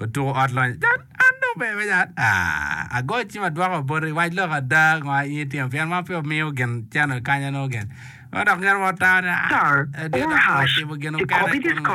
otuko ot lonyo can an dong pe me can aah agoyo cim adwoko boti wac lok ada ngo aye ityeno pien ma pe omiyo gin cano kanya nongo gin ma dok gin wa tamo ni aah adit dok pe watimo gin mukene kunu.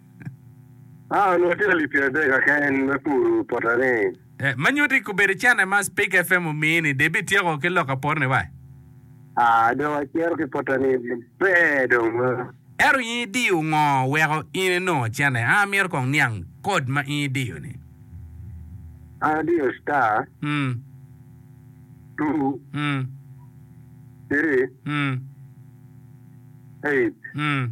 Ah, onongo tye alip pyeradek akeken me puro pota ni. Eh, ma nyuti kobedo cene ma Speak FM omiyi ni, Debbie tyeko ki lok apor ni wa. Ah, dong acito ki pota ni maber dong ma. Ento in idiyo ngo weko in inongo cene? Ah, amyero kong niang code ma in idiyo ni. An adiyo star. Mm. Two. Mm. Three. Mm. Eight. Mm.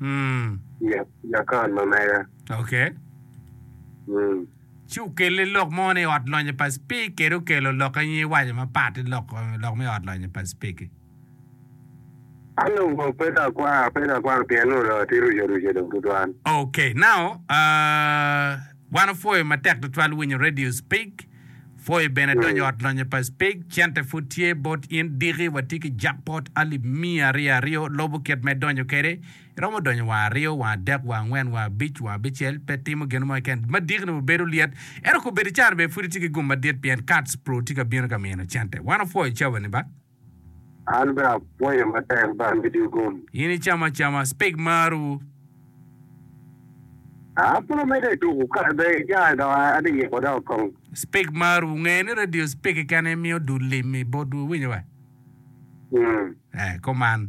Mm. Ja- Jakon ma mega. Okay. Mm. Ci okelle lok mo ni ot lonyo pa Speke kede okelo lok i nyi waco mapat ki lok lok me ot lonyo pa Speke. An dong kong pe ka akwang, pe ka akwang pien nongo dong atye ruco ruco dong tutwal. Okay, now uh, wan opwoyo matek tutwal winyo Radio Speke Foy bene donyo ot lonyo pa Speke, cente pud tye bot in diki, watye ki jackpot alip miya aryo aryo, lobo kit me donyo kede, iromo donyo wa aryo wa adek wa angwen wa abic wa abicel, pe timo gin mo keken, ma diki ni wabedo lyet, ento kobedi caro bene pud itye ki gum madit pien cards pru tye ka bino ka mino cente, wan wafoyo cawa ni ba. An bene apwoyo matek ba amedi gum. In icamo acama speg marwu. An pud amedde tuku kare bene icange dok ati yiko dok kong. Speg marwu. Wungeye ni radio speg keken aye miyo dul lim i botwu, iwinyo wa? Ee, kuman.